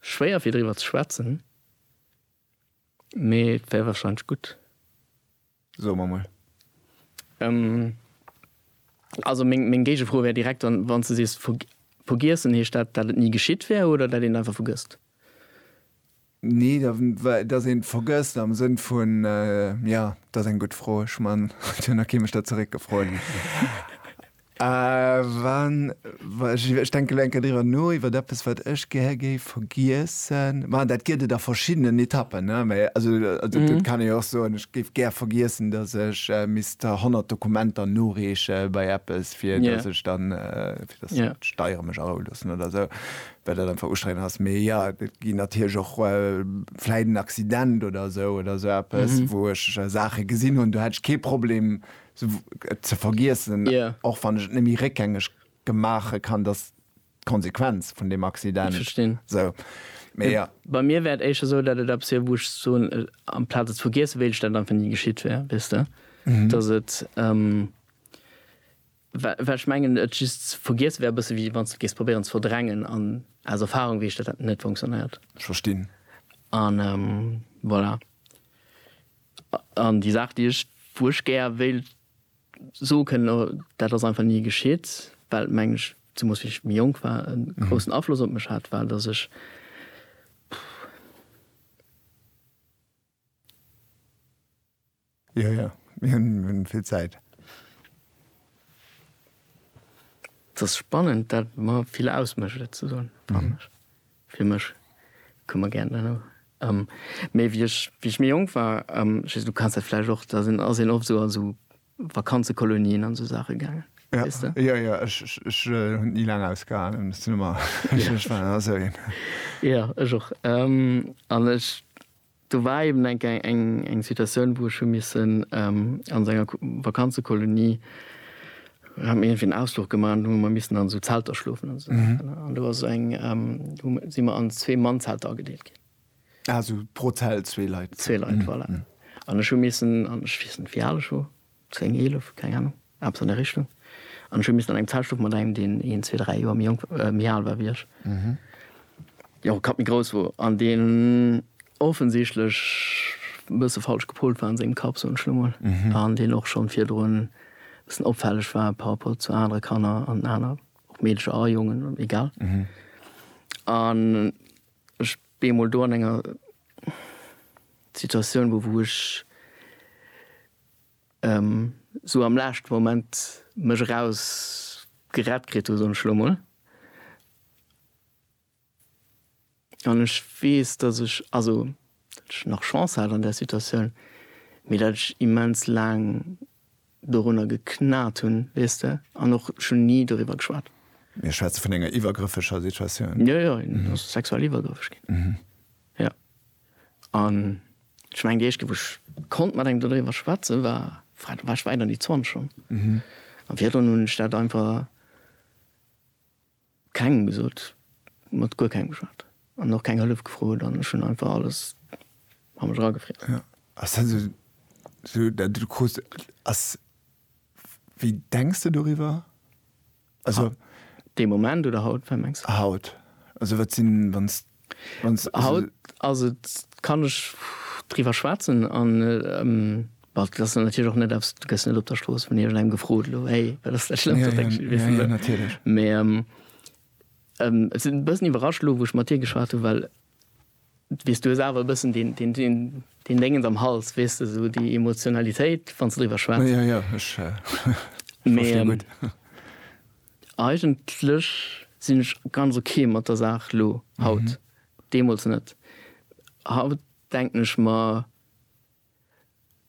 Schwéier fir driwwer ze schwätzen, mee et wär wahrscheinlech gutt. Soe mer mol. Also meng meng Géigefro wär direkt dann, wann s de sees ver vergiessen, heescht dat, dat et ni geschitt wär oder dat een et einfach vergësst? Nee, da well dass een et vergësst am Sënn vun, jo, dat ass eng gutt Fro, ech man et huet nach kee mech dat zeréckgefrot. Ech denke elo eng Kéier driwwer no, iwwer eppes, wat ech gär géif vergiessen. Mä dat gëtt et a verschiddenen Etappen. Dat kann ee jo och soen, ech géif gär vergiessen, datt ech misst 100 Dokumenter noreeche bei eppes, fir datt ech dann d'Steiere mech aroue loossen oder esou, well dat einfach ustrengend ass. Mee jo, et ginn natierlech och vläicht en Accident oder esou, oder esou eppes, wou ech Saache gesinn hunn, do hätt ech kee Problem, Ze vergiessen, och wann ech et net méi réckgängeg maache kann, dass d'Konsequenz vun deem Accident esou. Mee jo. Bei mir wär et éischter esou, datt et eppes wier, wou ech soen, amplaz et ze vergiessen, wéilt ech, datt et einfach ni geschitt wär, weess de. Datt et, well ech mengen, et just ze vergiessen wär e bësse wéi wann s de géifs probéieren ze verdrängen. An aus Erfarung weess ech, datt dat net funktionéiert. Ech verstinn. An voilà. An déi Saach, déi ech, wou ech gär wéilt soe kënnen, oh, dat ass einfach ni geschitt, well, mengen ech, zemoos wéi ech méi jonk war, e groussen Afloss op mech hat, war, datt ech, Jo, jo, mir hunn vill Zäit. Et ass spannend, dat mer vill ausmécht, et ze soen, fannen ech. Fir mech koum mer gären dann och méi wéi ech wéi ech méi jonk war. Just du kanns dat vläicht och, da sinn ass een oft esou a sou Vakanzekolonien an esou Saache gaangen, weess de? Jo, jo, ech ech hunn et ni laang ausgehalen, ech sinn ëmmer ech ech war ëmmer esou een. Jo, ech och an ech Do war eben eng Kéier eng Situatioun, wou ech hu missen a sou enger Vakanzekolonie, haten mir iergendwéi en Ausfluch gemaach an do hu mer missen an esou Zelter schlofen an esou Saachen. An do ass eng, do si mer an zwee Mannzelter agedeelt ginn. Ah, sou pro Zelt zwee Leit. Zwee Leit, voilà. An ech hu missen, an ech weess net, wéi al ech wor, 10, 11, keng Ahnung, eppes an där Richtung. An ech hu missen an engem Zell schlofen mat engem, deen een, zwee, dräi Joer méi jonk, méi al war wéi ech, deen och e Kapp méi grouss wor an deen offensichtlech e bësse falsch gepolt war an sengem Kapp, soen ech elo mol, an deen och schonn virdrun e bëssen opfälleg war par rapport zu anere Kanner an aner, ob Meedercher a Jongen, egal. An ech bemol do an enger Situatioun wor, wou ech. esou am laeschten Moment mech eraus gerett kritt hu soen ech elo mol, an ech weess dass ech, also dat ech nach Chance hat an där Situatioun, mee dat ech immens laang dorunner geknat hunn, weess de, an och schonn ni doriwwer geschwat. Mir schwätze vun enger iwwergrëffeger Situatioun? Jo jo, en ass sexuell iwwergrëffeg ginn, jo. An ech mengen déi éischte wou ech konnt mat engem dodriwwer schwätzen war, wei do war ech wäit an déi 20 schonn. An virdrun hunn ech dat einfach kengem gesot, mat guer kengem geschwat an och keng Hëllef gefrot an ech hunn einfach alles a mech eragefriess. Jo, ass dat esou esou dat du krus ass, wéi denks de doriwwer? Also. Dee Moment oder haut, wat mengs de? Haut. Also wat sinn, wann s, wann s, also. Haut ass et, kann ech driwwer schwätzen an, bon, dat ass dann natierlech och net eppes, du gëss net op der Strooss vun iergendengem gefrot elo, hey, wat ass dat Schlëmmst, wat denkst du? Jo, jo, natierlech. Mee et sinn e bëssen iwwerrascht elo, wou ech mat dir geschwat hunn, well. Weess, du hues awer e bëssen deen Déngens am Hals, weess de, esou déi Emotionalitéit, wann s de driwwer schwätz. Jo, jo, ech verstinn gutt. Mee eigentlech sinn ech ganz ok mat der Saach elo, haut. Deemools net. Haut denken ech mer.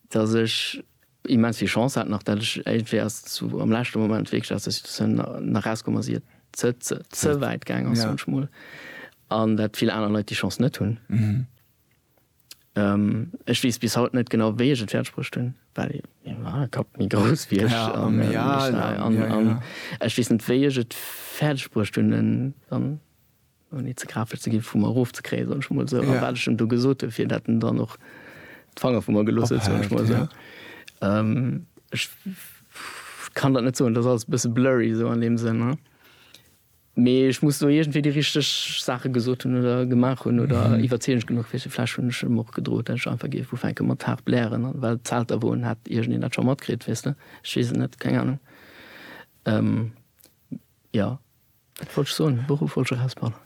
dass ech immens vill Chance hat nach, dat ech iergendwéi ass zu am leschte Moment wierklech aus der Situatioun nach rauskomm ass ier et ze wäit gaang ass, soen ech mol, an dat vill aner Leit déi Chance net hunn. Ech weess bis haut net genau wéi ech et fäerdeg bruecht hunn, well mäi Kapp méi grouss wier ech an ech weess net wéi ech et fäerdeg bruecht hunn en dann. Ouni ze grapeg ze ginn, vu mer erof ze kréien, soen ech mol esou. A wat ech em do gesot hunn, fir datt en dann och d'Fanger vu mer gelooss huet, soen ech mol esou. Ech kann dat net soen, et ass alles e bësse blurry esou an deem Sënn. Mee ech muss do iergendwéi déi richteg Saache gesot hunn oder gemaach hunn oder iwwerzeegend genuch fir se. Vläch hunn ech em och gedroot, datt ech einfach géif ufänke mat haart blären, an well d'Zelter wou en hätt iergendeen dat scho matkritt, weess de. Ech weess et net, keng Anung. Jo. Wat wollt ech soen? De Beruff wollt ech erausbannen.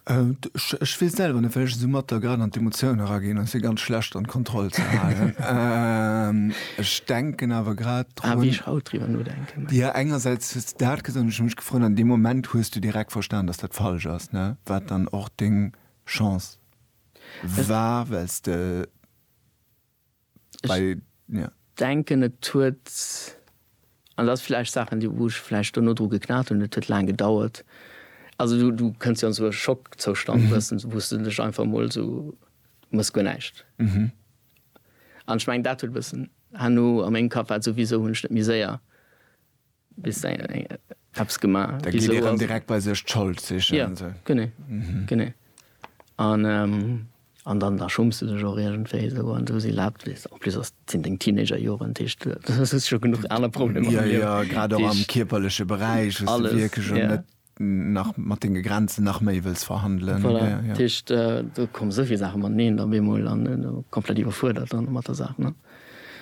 Ech weess selwer net, well ech esou matt da grad an d'Emotioun eraginn, an et wier ganz schlecht an d'Kontroll ze halen. Ech denken awer grad drun. A wéi ech haut driwwer nodenken. Jo, engersäits hues de dat gesot, an ech hu mech gefrot, an deem Moment hues du direkt verstan, datt dat falsch ass, ne? Wat dann och deng Chance war, well s de. Ech denken, et huet, an dat ass vläicht Saachen, déi, wou ech vläicht duerno dru geknat hunn, et huet laang gedauert. Also du, du kënns jo an esou e Schockzoustand wëssens, wou s de dech einfach emol esou, du mëss guer näischt. An ech mengen, dat huet e bëssen herno a mengem Kapp, war et souwisou, hunn ech net méi séier. Bis eng eppes gemaach. Da geet ee rëm direkt bei sech d'Schold sichen. Ja, genee, genee. An dann da schumms de dech och iergendwéi esou an esou si laabt weess de. En plus ass, sinn deng Teenagerjoren, dat heescht, du hues scho genuch aner Problemer am Liewen. Jo, jo, grad och am kierperleche Beräich, wou s de wierklech och net. nach mat denge Grenzen nach méi wëlls verhandelen. Voilà, dat heescht, do kommen esou vill Saache mateneen op eemol an komplett iwwerfuerdert dann mat der Saach, ne?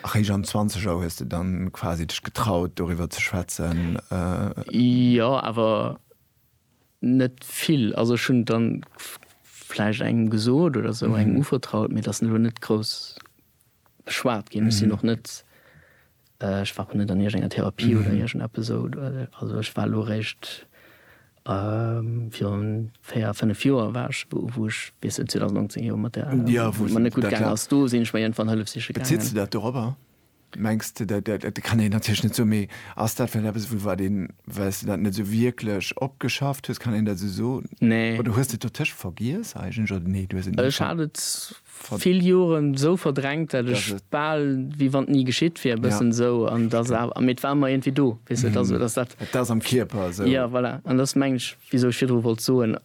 Eréischt am Zwanzeger hues de dann quasi dech getraut, doriwwer ze schwätzen? Jo, awer net vill. Also ech hunn dann vläicht engem gesot oder esou, engem uvertraut, mee dat ass elo net grouss. beschwat ginn. Ech sinn och net, ech war och net an iergengenger Therapie oder iergendeppes esou. Also ech war elo eréischt virun véier, fënnef Joer war ech, wou ech bis 2019 jo mat der, wou et mer net gutt gaangen ass, do sinn ech mer iergendwann Hëllef siche gaangen. Bezitt sech dat dorobber? Mengs de, dat kann een natierlech net soen, mee ass dat vläicht eppes, wou wat een, well s de dat net esou wierklech opgeschafft hues, kann een dat esou soen? Nee. Oder hues de et dotëscht vergiess eigentlech, oder nee, du hues et net. Ech hat et vill Joren esou verdrängt, dat ech bal wéi wann et ni geschitt wier, e bëssen esou. An et ass awer, mee et war ëmmer iergendwéi do, weess de, et ass esou, et ass dat. Et ass am Kierper esou. Jo, voilà. An et ass, mengen ech, wisou ech virdru wollt soen,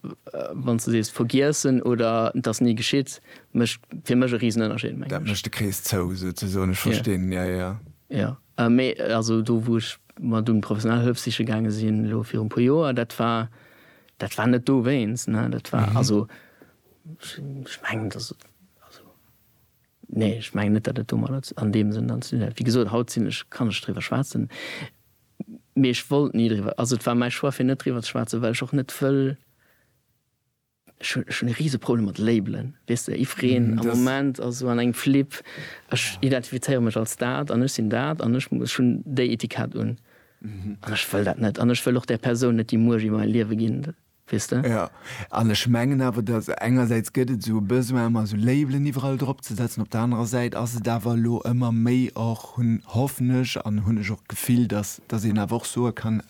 wann s de sees vergiessen oder et ass ni geschitt, mécht fir mech e Risenënnerscheed, mengen ech. Dat mécht de Krees zou, souzesoen. Ech verstinn, jo, jo. Jo, mee also do, wou ech mat un professionell Hëllef siche gaange sinn, elo viru e puer Joer, dat war, dat war net dowéinst, ne, dat war, also Ech mengen, dass et, also nee, ech mengen net, datt et domadder an deem Sënn dann ze dinn hätt. Wéi gesot, haut sinn ech, kann ech driwwer schwätzen, mee ech wollt ni driwwer, also et war mäi Choix fir net driwwer ze schwätzen, well ech och net wëll, ech hunn, ech hunn e Riseproblem mat Labelen, weess de, jiddwereen am Moment ass esou an engem Flip, ech identifizéiere mech als dat an ech sinn dat an ech, ech hunn déi Etikett un an ech wëll dat net an ech wëll och där Persoun net déi Muecht iwwer mäi Liewe ginn. weess de? Jo, an ech mengen awer, dass engersäits gëtt et esou e Besoin ëmmer esou Labelen iwwerall drop ze setzen, op der anerer Säit ass et awer elo ëmmer méi och, hunn, hoffen ech an hunn ech och d'Gefill, dass dass een awer och soe kann,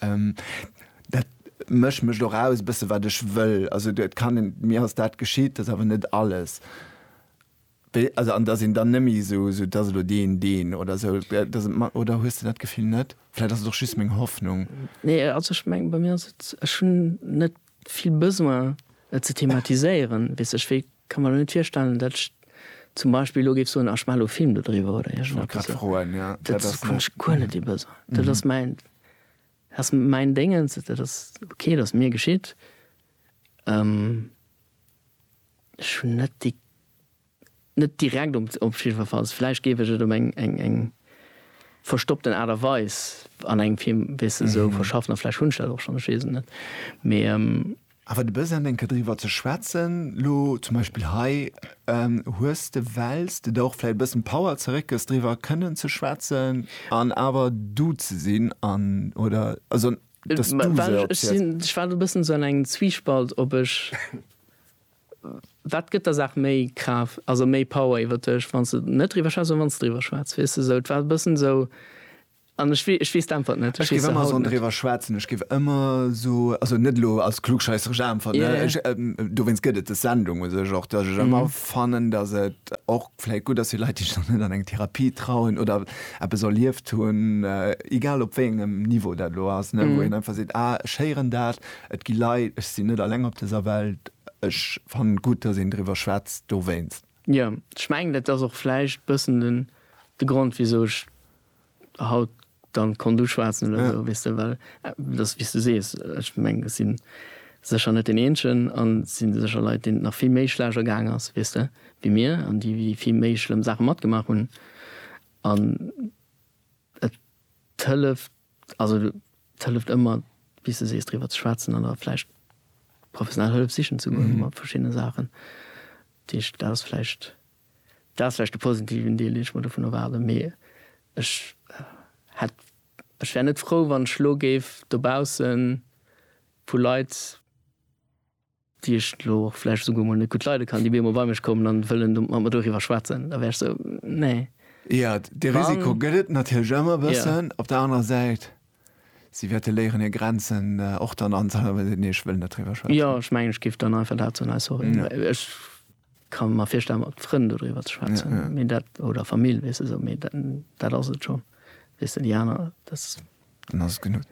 dat mécht mécht och aus e bësse wat ech wëll. Also et kann een, mir ass dat geschitt, dat ass awer net alles. Also an dass een dann nëmme esou esou, dass elo deen, deen oder esou, dass et mat, oder hues de dat Gefill net? Vläit ass et och just meng Hoffnung. Nee, also ech mengen, bei mir ass et, ech hunn net vill Besoin et ze thematiséieren, weess ech, wéi ka mer elo net virstellen, datt ech zum Beispill elo géif soen, ah ech maachen elo e Film dodriwwer oder iergend eppes. Grad froen, ja. Dat ass, hunn ech guer net dee Besoin. Dat ass mäin, ass mäin Déngens, dat ass ok, dat ass mir geschitt. Ech hunn net déi, net direkt um, op jiddwerfalls, vläicht géif ech et op eng, eng, eng verstoppten Aart a Weis an engem Film, weess de, esou verschaffen a vläicht hunn ech dat och schonn, ech weess et net, mee. Awer de Besoin eng Kéier driwwer ze schwätzen, lo zum Beispill hei, hues de, wells de der och vläicht e bëssen Power zeréckgëss, driwwer kënnen ze schwätzen an awer du ze sinn an, oder, also, dass du se. Well ech sinn, ech war elo e bëssen esou an engem Zwiespalt, ob ech Wat gëtt der Saach méi Kraaft, also méi Power iwwert dech, wann s de net driwwer schwätz oder wann s driwwer schwätz? Weess de esou, et war e bëssen esou an ech wee, ech weess d'Äntwert net. Ech géif ëmmer esou driwwer schwätzen, ech géif ëmmer esou, also net elo als klugscheisseresch Äntwert, ne, ech, dowéinst gëtt et dës Sendung u sech och, datt ech ëmmer fannen, datt et och vläicht gutt ass fir Leit, déi sech nach net an eng Therapie trauen oder eppes erlieft hunn, egal op wéi engem Niveau dat elo ass, ne, wou een einfach seet, ah, ech héieren dat. Et gi Leit, ech sinn net alleng op dëser Welt, ech fannen et gutt, dass een driwwer schwätzt dowéinst. Jo, ech mengen et ass och vläicht bëssen den de Grond wisou ech haut dann konnt uschwaatzen oder esou, weess de, well et ass wéi s du sees, ech mengen ech sinn sécher net deen eenzegen an et sinn sécher Leit deenen et nach vill méi schlecht ergaang ass, weess de, wéi mir an déi wéi vill méi schlëmm Saache matgemaach hunn an et hëlleft Also et hëlleft ëmmer, wéi s de sees, driwwer ze schwätzen an da vläicht professionell Hëllef sichen ze goen mat verschiddene Saachen. Dat heescht, dat ass vläicht, dat ass vläicht de positiven Deel, deen ech mer dovun erwaarden. Mee ech hätt, ech wär net frou, wann ech elo géif dobausse vu Leit, déi ech elo och vläicht esouguer emol net gutt leide kann, déi bemol bei mech kommen an wëllen do mat mer doriwwer schwätzen, da wär ech sou, nee. Jo, dee Risiko gëtt et natierlech ëmmer e bëssen. Op der anerer Säit, si wäerte léieren hir Grenzen och dann anzehalten, wa si seet, nee, ech wëll net driwwer schwätzen. Jo, ech mengen, ech géif dann einfach dat soen, nee, sorry, ech ka mer virstellen, mat Frënn dodriwwer ze schwätzen, mee dat, oder Famill, weess de, sou, mee dat, dat ass et schonn, weess de, déi aner, dat. Dann ass et genuch.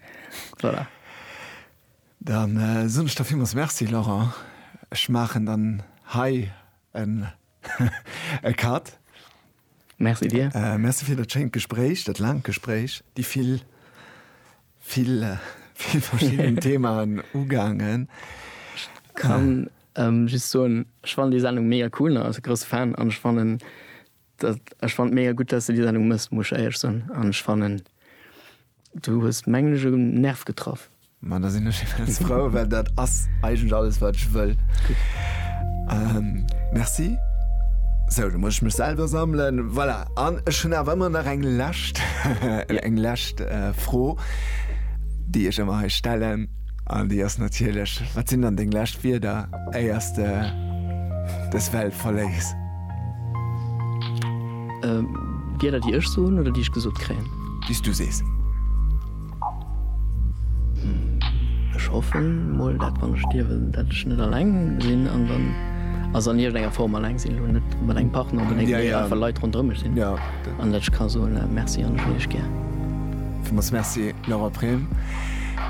Voilà. Dann soen ech der villmools Merci, Laurent. Ech maachen dann hei en e Cut. Merci dir. Merci fir dat schéint Gespréich, dat laangt Gespréich, déi vill, vill, vill verschidden Themaen ugaangen. Ech kann just soen, ech fannen déi Sendung mega cool, also grousse Fan, an ech fannen Ech fannen et mega gutt dass de déi Sendung mëss, muss ech éierlech soen, an ech fannen du hues mengen ech en Nerv getraff. Ma da sinn ech immens frou, well dat ass eigentlech alles wat ech wëll. Merci. Sou, da muss ech mech selwer sammelen. Voilà, an ech hunn awer ëmmer nach eng lescht, eng lescht Fro déi ech ëmmer hei stellen, an déi ass natierlech, wat sinn dann deng lescht Wierder éiers de dës Welt verléiss? Wieder déi ech soen oder déi ech gesot kréien? Déi s du sees. Ech hoffen mol dat wann ech stierwen, dat ech net alleng sinn an dann, also an iergendenger Form alleng sinn, elo net mat engem Partner, mee einfach mat de Leit ronderëm mech sinn an dat ech ka soen, Merci an ech hunn iech gär. Villmools Merci, Laura Prem.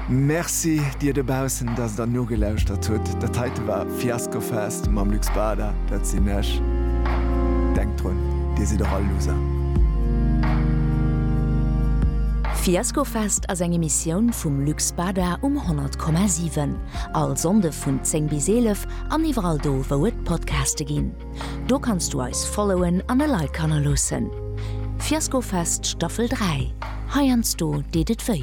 Merci dir dobaussen, dass der nogelauschtert hutt. Dat heite war. Fiasco Fest mam Luc Spada, dat sinn ech. Denkt drun, Dir sidd och all Loser. Fiasco Fest ass eng Emissioun vum Luc Spada um 100,7. All Sonnde vun 10 bis 11 an iwwerall do wou et Podcaste ginn. Do kanns du eis followen an e Like hannerloossen. Fiasco Fest Staffel 3, heiansdo deet et wéi.